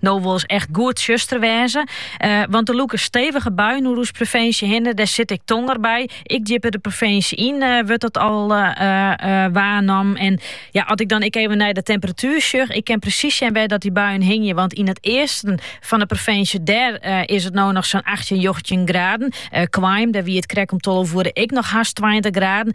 No wol 's echt goed tsjuster wêze. Want der lûke stevige buien oer ús provinsje hinne. Dêr sit ek tonger by. Ek djipper de provinsje yn wurdt dat al waarnommen. En ja, as ik dan ek even nei de temperatuer sjoch. Ik ken presys sjen wêr't dat dy buien hingje. Want yn it easten fan de provinsje, dêr is it no noch sa'n achttjin, njoggentjin graden. Quaim, dêr wie it krekt om tolve oere ek noch hast tweintich graden.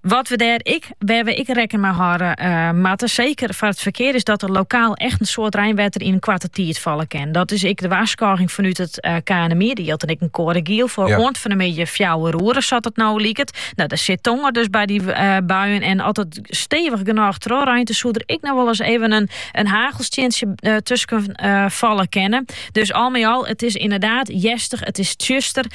Wat we dêr ek, wêr we ek rekken mei hâlde eh, moatte, seker foar it ferkear, is dat er lokaal echt in soad reinwetter yn in koarte tiid falle kin. Dat is ek de warskôging fanút it eh, KNMI. Der jildt dan ek in koade giel foar ja, oant fan de middei fjouwer oeren, sa't it no liket. No, dêr sit tonger dus by dy eh, buien. En as it stevich genôch trochreint, dan soe der ek noch wolris even in, in hagelstientsje tusken falle kinne. Dus al mei al, it is inderdaad hjerstich, it is tsjuster.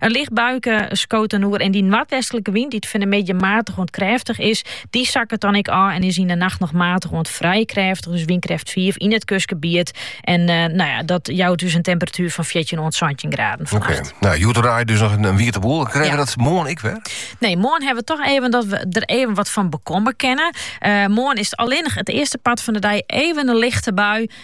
In licht buike skoot dan oer en dy noardwestlike wyn, dy't fan de middei maatich oant krêftich is, dy sakket dan ek ôf en is yn de nacht noch maatich oant frij krêftich, dus wynkrêft fiif yn it kustgebiet. En nou ja, dat jout dus in temperatuer fan fjirtjin oant santjin graden fannacht. Oké, nou hjoed en rij dus noch in wiete boel. Krije we dat moarn ek wer? Nee, moarn hawwe we toch even dat we der even wat fan bekomme kinne. Moarn is allinnich it earste part fan de dei even in lichte bui.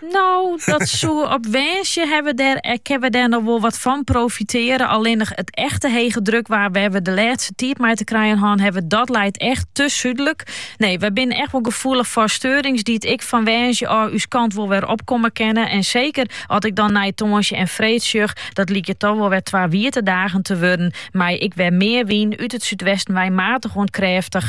No, dat soe op Wênsje ha we dêr, eh, ken we dêr noch wol wat fan profiteren. Allinnich it echte hegedrukwaar wêr we de lêste tiid mei te krijen hân hawwe, dat leit echt te súdlik. Nee, we binnen echt wol gefoelich foar steurings dy't ek fan Wênsje ôf ús kant wol wer opkomme kinne. En seker as ik dan nei Toansje en Freed sjoch, dat lykje toch wol wer twa wiete dagen te wurden mei ek wer mear wyn út it súdwesten wei maatich oant krêftich.